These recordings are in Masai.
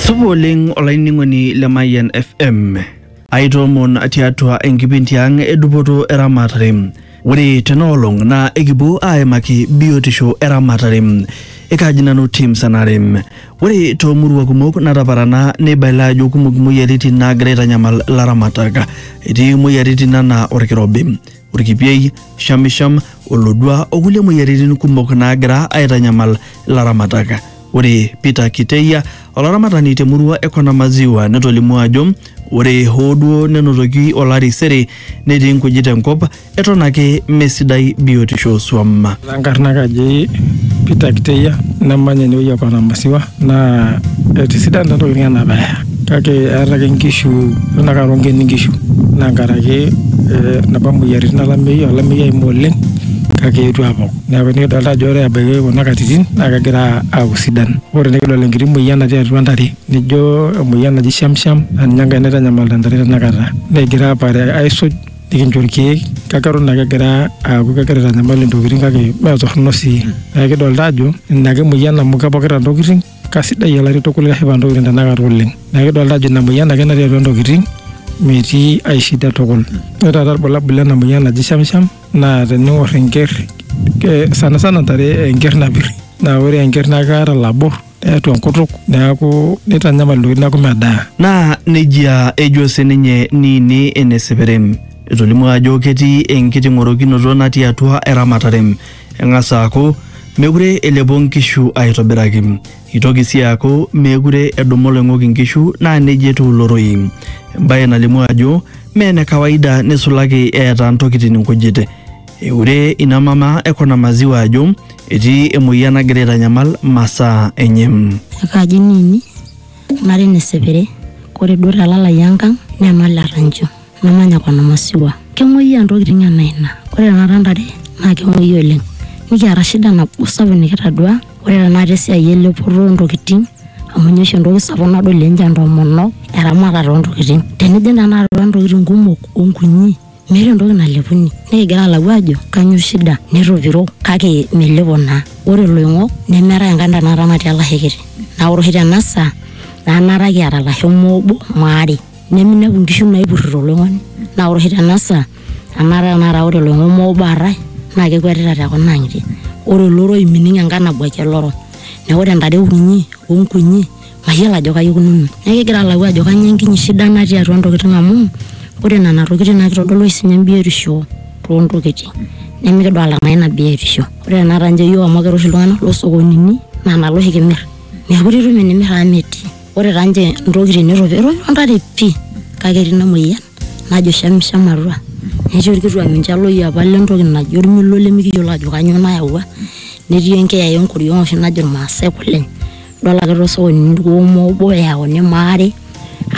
Supa oleng olainining'oni le Mayian FM. Aitoomon tiatua enkipindi ang edupoto eramatare. Ore tenaolong naa ekipuo aimaki biotisho eramatare. Ekaji nanu Tim Sanare. Ore toomurua kumok nataparana neibaila ajo kumok imoyiaritin naagira aitanyamal ilaramatak. Etii imoyiaritin anaa olkirobi. orkipiei, shamisham, olodua o kulie moyiaritin kumok naagira aitanyamal ilaramatak. Ore Peter Kiteia, olaramatani te murua e Kona Maziwa netolimuo ajo ore hoo duo nenotoki olari sere netii nkujit enkop eton ake mesidai biotisho oo swam. Enkarna kaji Peter Kiteia namanya enewueji e Kona Maziwa. naa etisidana taa ntokitin anaa peeya kake eata ake nkishu eton ake aa ronkeni nkishu naa nkaraki napa moyiaritin elameiyu, elameiyu eimu oleng kake eewuo apok naaku nikidolita ajo ore ebaki kuna katitin naa kegira aaku sidan, ore nikidol enkiti moyian natii atua intare nijo emoyian naji shamsham naa ninye enkae naitanyamalita intare tenakata, negira aapare aaisuj. nikincho irkeek kake eton ake egira aaku kegira aitanyamal intokitin kake mee torrono sii neeku kidolta ajo ina ake emoyian amu kepokita intokitin kasidai olari tukul keshipa intokitin tenakata oleng neeku kidolta ajo ina moyian ake natii atua intokitin metii ae shida tukul ore taata irbulabul lena moyian naji shamsham naa tening'orr enkerr eh, sanasana intare enkerr napirri naa ore enkerr naa keeta ilabor. neatu enkutuk neaku neitanyamal ntokitin neaku medaa. Naa nejia ejo sininye Niini ene Seperem. Etolimuo ajo ketii enkiting'orokinoto natii atua eramatare. Eng'as aaku mekure elepo nkishu aitobiraki. Eitoki sii aaku meekure edumu oloing'ok inkishu naa neijia etiu ilo rorei. Embae nalimu ajo mee ene kawaida neisulaki eeta ntokitin nkujit. Eure ina mama e Kona Maziwa ajo etii emoyian nagira aitanyamal masaa enye. akaji nini nari nesepere kore duo telalai enkang nemal etancho namanya kona masiwa kemoyia ntokitin ena ina kore tenakata ntare naa kemoyia oleng nikiata shida nabo sapuk nikitadua ore tenakata esiai elepoto ontokitin amu ninye oshi entoki sapuk nadol ninche intomonok eramatare ontokitin tenijing tenakata atua ntokitin kumok onkunyi meeta entoki nalepuni nikigira alau ajo kanyo shida netopiro kake melepo naa ore loing'ok nemeetae enkae nda naata natii olashe kiti naa ore oshi tena saa naa naata kiata ilasho moobo maare neminepu inkishu naipurrito oloing'oni naa ore oshi tena saa anaata tenakata ore iloing'ok moobo aatae naa kekwetita te kuna ang'itie ore oloroi mining enkae nabuaki oloro neku ore intare kunyi onkunyi. mayiolo ajo kaji ikununo. Neeku kigira alau ajo kainyioo enkinyi shida natii atua ntokitin amu ore nena tokitin naa kitodolu oshi sininye embiotisho too ntokitin nimikidolita naa ina biotisho. Ore tenakata injo iyiook amu kira oshi iltung'anak loo sokonini naa nalo oshi kimir. Meekure itum enimir amu metii. Ore taa ninche intokitin netu epik etopiro intare pii kake etii ina moyian najo shamsham atua. Netii orkituak mincho elo iyie apal entoki naji ormilo limikiyiolo ajo kainyioo nayawua. Netii enkeeya enkoriong oshi najo irmaasai kule. idol ake tosokoni irkuoo obo eyauni maare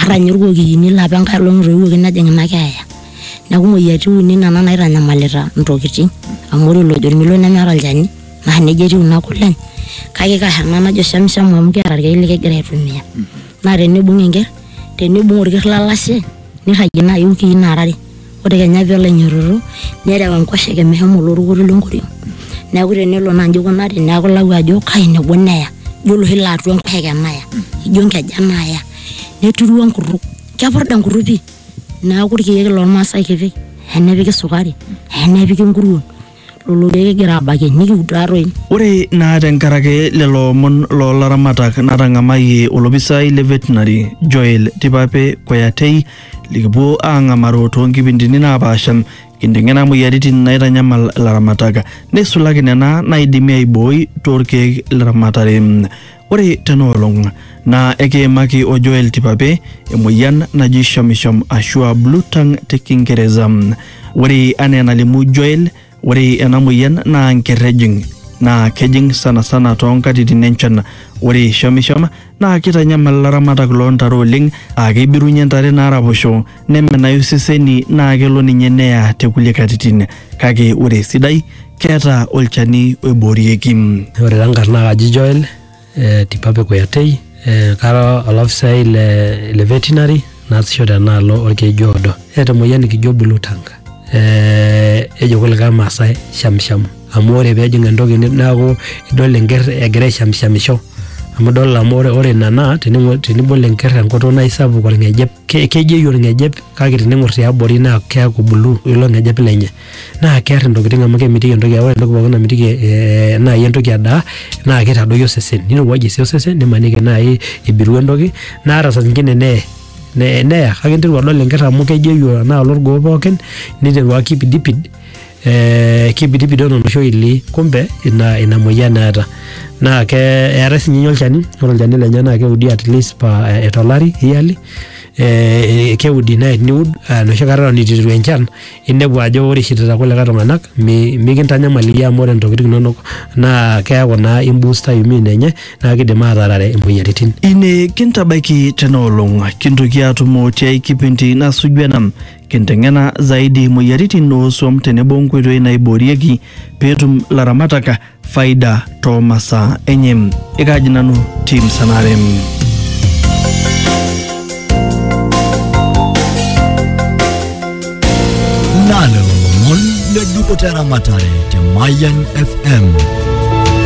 ata ninye irkokiyini laa apa enkae olong etoiwuoki nejing ina keeya neaku imoyiaritin uni nena naitanyamalita intokitin amu ore olojo ormilo nemeeta olchani naa nejia etiu ina kurleny kake kaa ena najo shamsham amu kiata irkeek likigira aitumia naa tenibung enkerr tenibung orkerr lolashe nirragie naaji iwikii nara are. ore kenya pelo ainyototo nerew enkoshoke meshomo olorukuto le nkoriong neaku tenelo naa nji ikunari neaku ilau ajo kai nebo neya ijo oloshi laa atua enkoshoke naya ijo nkejen naya neturu enkutuk kepurda enkutuk pii neaku irkiek lormasae kipik eya nepiki sukari eya nepiki nkuruon. lolo keek kigira aabakie nikiud taa toi. Ore naa tenkaraki lelo omon loo laramatak natang'amayie olopisai le Veterinary Joel Tipape Koyatei likipuo aang'amaru too nkipindini naapaasha kinteng'ena moyiaritin naitanyamal ilaramatak neisulaki nena naaidimi aibooi too lkeek le ramatare. Ore tena olong naa ekiimaki o Joel Tipape emoyian naji shomishom ashu a blue tongue te Kingereza. Ore anaa enalimu Joel, ore ena moyian naa nker ejing naa kejing sanasana too nkatitin enchan. Ore shomishom naa keitanyamal ilaramatak loo ntare oleng aa keibirunye ntare naaraposho nemenayu iseseni naa kelo ninye neya te kulie katitin kake ore esidai keeta olchani oiboorieki. Ore taa nkarn naa kaji Joel eh, Tipape Kuyatei eh, kara olafisai le, le veterinary naasisho tenaalo olkeju oodo. Eeta emoyian nikijo blue tongue eh, ejo kulikae Maasai shamsham amu ore peejing entoki ni- neaku idol enker egira aishamshamisho amu idol amu ore, ore ina naa tening'o- tenibol enker enkutuk naa isapuk olng'ejep. ke- kejeyu olng'ejep kake tening'or tiabori naa keaku bulu ilo ng'ejep lenye naa kear intokitin amu kemitiki entoki ore entoki pookin namitiki eh, naaji entoki edaa naa keitadoyio osesen nirowuajie sii osesen nimaniki naaji ibiru entoki naa ata saa zingine neye ne- neya kake interu adol enkerr amu kejeyu anaa olorgoo pookin niteru akipidipid eh, kibidibidon oloshi oili kumbe ina, ina moyian eeta naa ke eetae sinye ninye olchani ore olchani lenye naa keudi at least pa eh, tolari yearly eh, keudi nae teniud eh, enoshi kata eton itu eiteru enchan inepu ajo ore ishirita kulikae tung'anak mi, mikintanyamal iyie amu ore ntokitin inonok naa keeku naa imbusta immune enye naa kidim atarare imoyiaritin Ine kintabaiki tena olong, kintoki aatumo tiai kipindi nasuju ena. Kinteng'ena zaidi moyiaritin oo swam tenebo nkoitoi naiboorieki peetum laramatak faida too masaa enye. Ekaaji nanu Tim Sanare. Nalo lomon le dupoto eramatare te Mayan FM.